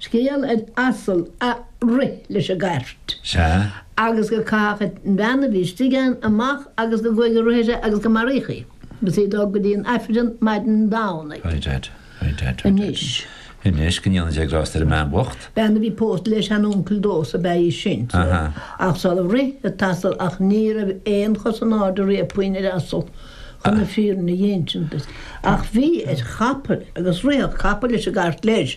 Scéal ar asal a' rith leis a' gcairt. Sea. Agus gur caitheadh an bhean a bhí istigh ann amach agus go gcuaigh an roth uirthi agus gur maraíodh í. Agus í ag dul go dtí an Aifreann ar maidin Domhnaigh. Right dead, right dead, right dead. Anois. Anois, go ndéana Dia grásta ar an mbean bhocht. Bean a bhí pósta le seanúncail domhsa ab ea í sin. Aha. Ach sar a rith a t-asal ach ní raibh aon chos in airde riamh puinn ar asal chun na fírinne a dh'innsint duit. Ach bhí ar chapall agus ritheadh capall leis a' gcairt leis.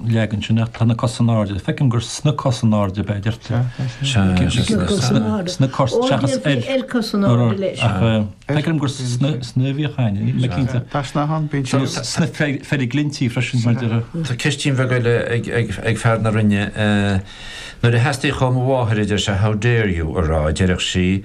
leagan sin ach tá na cosa in airde. Feicim gur sna cosa in airde a bhí, deirtear. Sna cosa seachas ar. Ar cosa in airde leis. Ach feicim gur sna sna a bhíodh againne. Níl mé cinnte. Tá sna ann, bíonn sé. Sna feirí glintí freisin mar deir. Tá ceistín bheag eile ag ag ag fear na Rinne. Nuair a theastaíodh óm mháthair a deir sé, how dare you a rá, deireadh sí,